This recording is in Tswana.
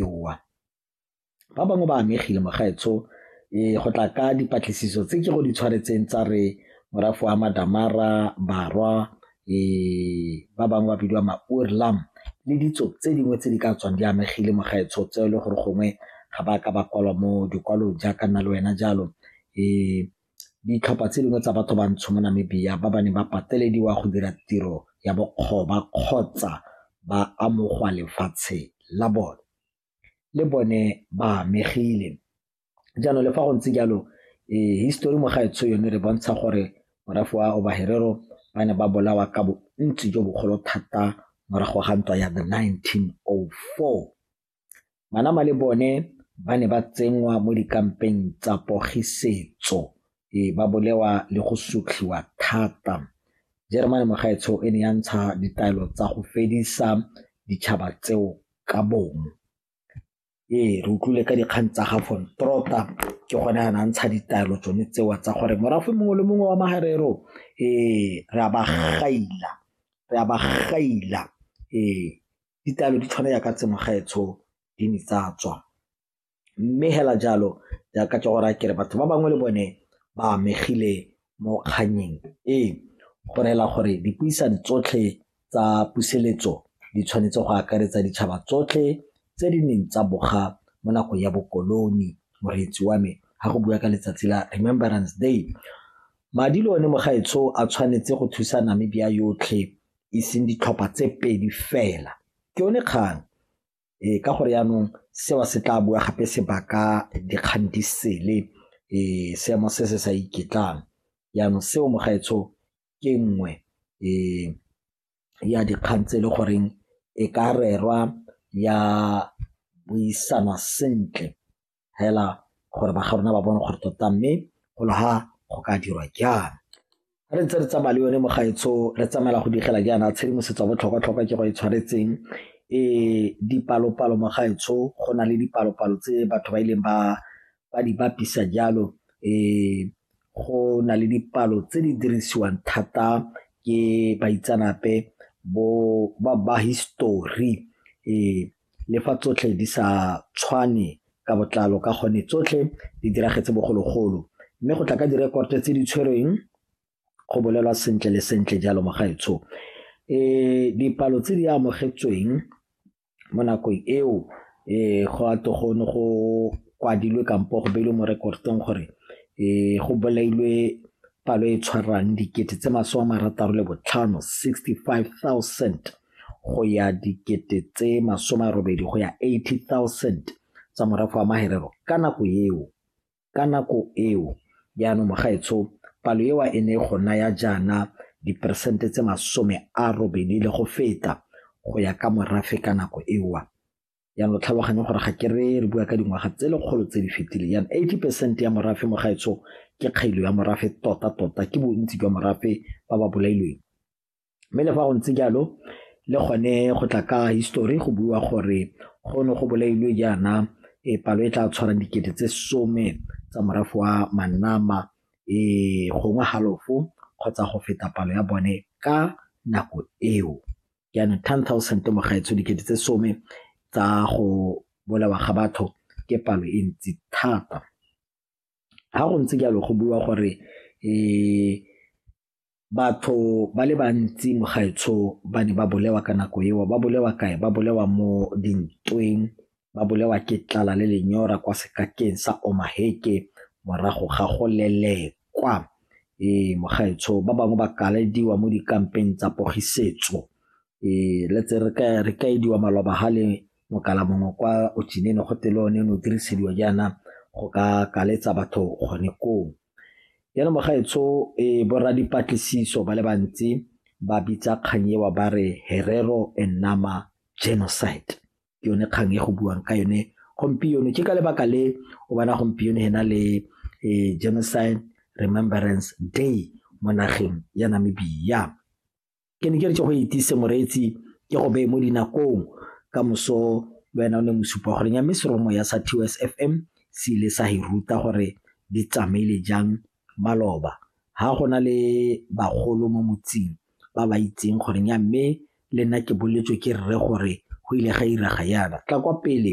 fetoha. Ba bangwe ba amegile mogaetsho go tla ka dipatlisiso tse ke go di tshwaretseng tsa re morafe wa Madamara, Barwa, ba bangwe ba bidiwa ma-Oorlam le ditso tse dingwe tse di ka tswang di amegile mogaetsho tse e le gore gongwe ga ba ka ba kwalwa mo dikwalong jaaka nna le wena jalo . ditlhopha tse dingwe tsa batho bantsho mo Namibia ba ba neng ba patelediwa go dira tiro ya bokgoba kgotsa ba amogwa lefatshe la bone le bone ba amegile. Jaanong le fa go ntse jalo eh, histori mo gaetsho yone re bontsha gore morafe wa Obaherero ba ne ba bolawa ka bontsi jo bogolo thata morago ga ntwa ya the 1904 Manama le bone ba ne ba tsenngwa mo dikampeng tsa pogisetso e ba bolewa le go sutlhiwa thata jeremane mogaetsho e ne ya ntsha ditaelo tsa go fedisa ditšhaba tseo ka bong ee re utlwile ka dikgang tsa ga von trota ke gone a na ntsha ditaelo tsone tsewa tsa gore morafe mongwe le mongwe wa magarero ee re a ba gaila re a ba gaila ee ditaelo di tshwana yaka tseno ga etsho di ne tsa tswa mme hela jalo jaaka ke gore a kere batho ba bangwe le bone ba amegile mo kganyeng e go reela gore dipuisano tsotlhe tsa puseletso di tshwanetse go akaretsa ditšhaba tsotlhe tse di neng tsa boga mo nakong ya bokoloni moreetsi wa me ga go bua ka letsatsi la remembrance day madi le one mogaetsho a tshwanetse go thusa namibia yotlhe e seng ditlhopha tse pedi fela ke yone kgang ee ka gore yaanong seo se tla bua gape sebaka dikgang di sele um seemo se se sa iketlang yaanong seo mogaetsho ke nngwe um ya dikgang tse e le goreng e ka rerwa ya buisana sentle fela gore ba ga rona ba bone gore tota mme go le ga go ka dirwa jang re ntse re tsamaya le yone mogaetsho re tsamaela go digela jaana tshedimosetso ya botlhokwa-tlhokwa ke go e tshwaretseng um dipalopalo mogaetsho go na le dipalopalo tse batho ba ileng ba ba di bapisa jalo um go na le dipalo tse di dirisiwang thata ke baitsanape bo ba ba history um Le fa tsotlhe di sa tshwane ka botlalo ka gone tsotlhe di diragetse bogologolo mme go tla ka direkoto tse di tshwerweng go bolelwa sentle le sentle jalo mogaetsho e dipalo tse di amogetsweng mo nakong eo e go a togono go kwadilwe kampo go beilwe mo rekotong gore e go bolailwe palo e tshwarang dikete tse masome a marataro le botlhano 65 000 go ya dikete tse masome a robedi go ya 80,000 tsa morafe wa maherero ka nako eo ka nako eo jaanong mogaetsho palo eo e ne go naya jaana diperesente tse masome a robedi le go feta go ya ka morafe ka nako eo yang lo tlhaloganye gore ga ke re re bua ka dingwaga tse lekgolo tse di fetileng yang 80 percent ya morafe mo gaetsho ke kgailo ya morafe tota tota ke bontsi jwa morafe ba ba bolailweng mme le fa go ntse jalo le gone go tla ka histori go bua gore go ne go bolailwe jaana e palo e tla tshwarang dikete tse some tsa morafe wa manama e gongwe halofo kgotsa go feta palo ya bone ka nako eo jaanong ten thousand mogaetsho dikete tse some tsa go bolawa ga batho ke palo e ntsi thata Ga go ntse jalo go buiwa gore batho ba le bantsi mo gaetsho ba ne ba bolewa ka nako eo, ba bolewa kae? Ba bolewa mo dintweng, ba bolewa ke tlala le lenyora kwa sekakeng sa Omaheke morago ga go lelekwa. Ee, mo gaetsho ba bangwe ba kalediwa mo dikampeng tsa pogisetso, let's say re kaediwa maloba fale Mokala mongwe kwa Ochinene go tele one ne o dirisediwa jaana go ka kaletsa batho gone koo. Jaanong mogaetsho e borra dipatlisiso ba le bantsi ba bitsa kgang ewa ba re Herero and Nama genocide ke yone kgang e go buang ka yone gompieno ke ka lebaka le o bona gompieno hena le e, genocide remembrance day mo nageng ya namibia Ke ne ke re ke go itsise moreetsi ke go beye mo dinakong ka moso le wena o ne mosupa gore nya mme seromo ya sa TOS FM se ile sa e ruta gore di tsamaile jang maloba ha go na le bagolo mo motseng ba ba itseng gore nya mme le nna ke boletswe ke rre gore go ile ga iraga yana tla kwa pele